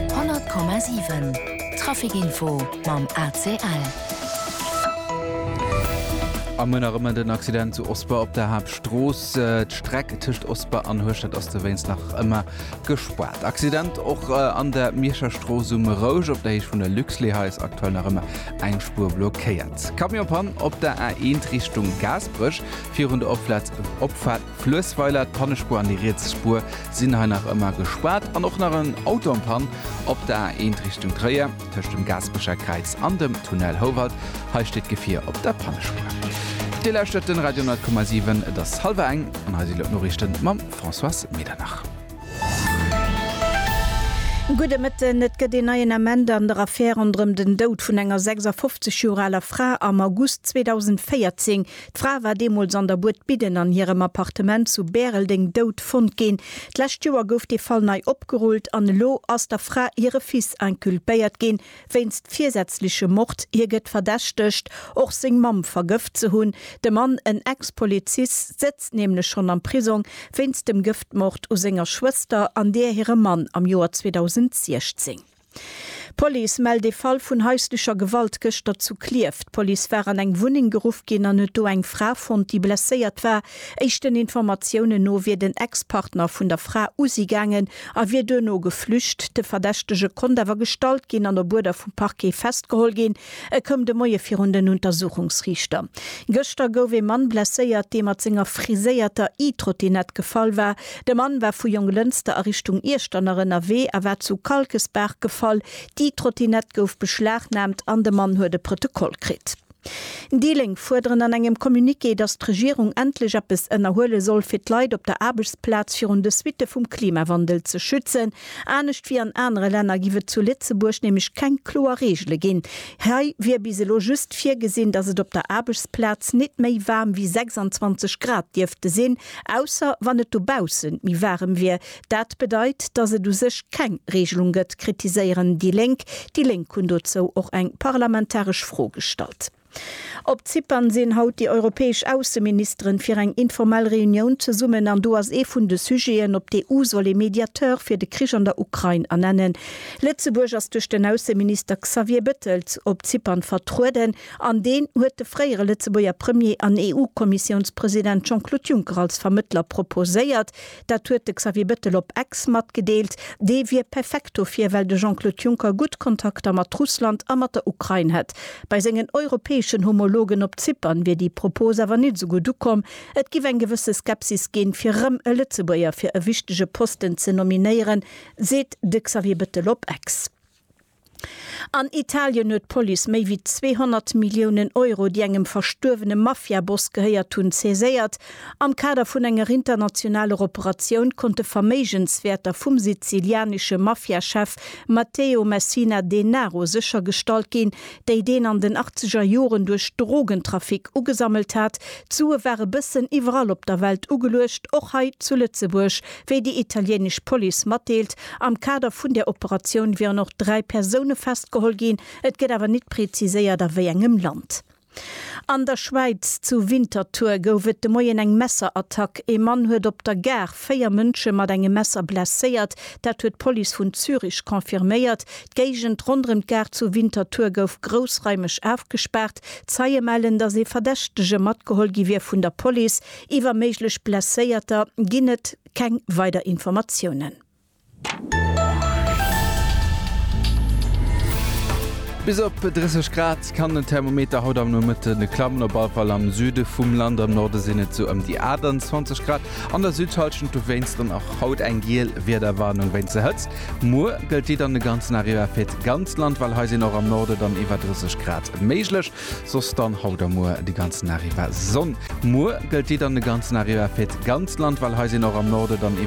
100,7 Traficinfo mam ACL. Am Mënner ëm en Accident zu Osper op der Haaptstrooss. D'Streck tëscht Osper an Hueschtert ass dowéinst nach ëmmer gespaart. Accident och an der Mierscher Strooss um Rouge op der Héicht vun der Luxlait. Hei ass aktuell nach ëmmer eng Spuer blockéiert. Camion-Pann op der A1 Richtung Gaasperech virun der Opfahrt Fluessweiler, d'Pannespuer an déi riets Spuer sinn hei nach ëmmer gespaart an och nach en Auto am Pann op der A1 Richtung Tréier tëscht dem Gaasperecher Kräiz an dem Tunnel Houwald. Hei steet d'Gefier op der Pannespuer. Dir lauschtert den Radio 10,7. Et ass hallwer eng an hei si lo d'Noriichten mam Françoise Medernach. Gudde Mëtten. Et gëtt een neien Ament an der Affär ronderëm den Doud vun enger 56 Joer aler Fra am August 2014. D'Fra war deemools an der Buert Bidden an hirem Appartement zu Bäreldeng dout fonnt ginn. D'lescht Joer gouf dee Fall nei opgerullt an elo ass der Fra hire Fils inculpéiert ginn, wéinst virsätzlechem Mord. Hie gëtt verdächtegt, och seng Mamm vergëft ze hunn. De Mann, en Ex-Polizist, sëtzt nämlech schonn am Prisong wéinst dem Gëftmord u senger Schwëster an där hirem Mann am Joer 2016. D'Police mellt ee Fall vun haislecher Gewalt gëschter zu Klierf. D'Police war an eng Wunneng geruff ginn an huet do eng Fra fonnt, déi blesséiert war. Éischten Informatiounen no wier den Ex-Partner vun der Fra u si gaangen a wier duerno geflücht. De Verdächtege konnt awer gestallt ginn an op Uerder vum Parquet festgeholl ginn. E koum de Moie virun den Untersuchungsriichter. Gëschter gouf ee Mann blesséiert, dee mat senger friséierter E-Trottinett gefall war. De Mann war vu Jonglënster a Richtung Iechternach ënnerwee a war zu Kalkesbaach gefall. D'E-Trottinett gouf beschlagnaamt an de Mann huet e Protokoll kritt. Déi Lénk fuerderen an engem Communiqué, datt d'Regierung endlech eppes ënnerhuele soll, fir d'Leit op der Aarbechtsplaz virun de Suitte vum Klimawandel ze schützen. Anescht wéi an anere Länner giff et zu Lëtzebuerg nämlech keng kloer Reegele ginn. Hei wier bis elo just virgesinn, datt et op der Aarbechtsplaz nit méi waarm wéi 26 Grad dierfte sinn, ausser wann et dobaussen méi waarem wier. Dat bedeit, datt et u sech keng Reegelung gëtt, kritiséieren déi Lénk. Déi Lénk hunn dozou och eng parlamentaresch Fro gestallt. Op Zypern sinn haut déi europäesch Ausseministeren fir eng informell Reunioun zesummen an do ass ee vun de Sujeten, ob d'EU soll ee Mediateur fir de Krich an der Ukrain ernennen. Lëtzebuerg ass duerch den Ausseminister Xavier Bettel op Zypern vertrueden an deen huet de fréiere Lëtzebuerger Premier an EU-Kommissiounspresident Jean-Claude Juncker als Vermëttler proposéiert. Dat huet de Xavier Bettel op Ex matgedeelt. Dee wier perfekt dofir, well de Jean-Claude Juncker gutt Kontakter mat Russland a mat der Ukrain hätt. Bei sengen europäeschen Homologen op Zypern wier déi Propos awer nit esou gutt ukomm. Et géif eng gewësse Skepsis ginn, fir erëm e Lëtzebuerger fir e wichtege Posten ze nominéieren, seet de Xavier Bettel op Ex. An Italien huet d'Police méi wéi 200 Milliounen Euro, déi engem verstuerwene Mafia-Boss gehéiert hunn, saiséiert. Am Kader vun enger internationaler Operatioun konnte Verméigenswäerter vum sizilianesche Mafia-Chef Matteo Messina Denaro séchergestallt ginn, déi deen an den achtzeger Joren duerch Drogentrafic ugesammelt hat. D'Sue ware bëssen iwwerall op der Welt ugeluecht, och hei zu Lëtzebuerg. Wéi déi italienesch Police matdeelt, am Kader vun der Operatioun wieren och dräi Persoune festgeholl ginn, et gëtt awer nit preziséiert a wéi engem Land. An der Schwäiz, zu Winterthur, gouf et de Moien eng Messerattack. Ee Mann huet op der Gare véier Mënsche mat engem Messer blesséiert, dat huet d'Police vun Zürich confirméiert. D'Géigend ronderëm d'Gare zu Winterthur gouf groussraimeg ofgespaart. Zeie mellen, datt ee Verdächtege matgeholl gi wier vun der Police. Iwwer méiglech Blesséierter ginn et keng weider Informatiounen. Bis op 30 Grad kann den Thermometer haut am Nomëtten klammen, op alle Fall am Süde vum Land. Am Norde sinn et sou ëm déi 28 Grad. An der Südhallschent dowéinst dann och haut eng giel Wiederwarnung wéinst der Hëtzt. Muer gëllt déi dann de ganzen Dag iwwer fir d'ganzt Land, well hei sinn och am Norde dann iwwer 30 Grad méiglech. Soss dann haut a muer de ganzen Arriva Sonn. Muer gëllt déi dann de ganzen Arriva fir d'ganzt Land, well hei sinn och am Norde dann iwwer.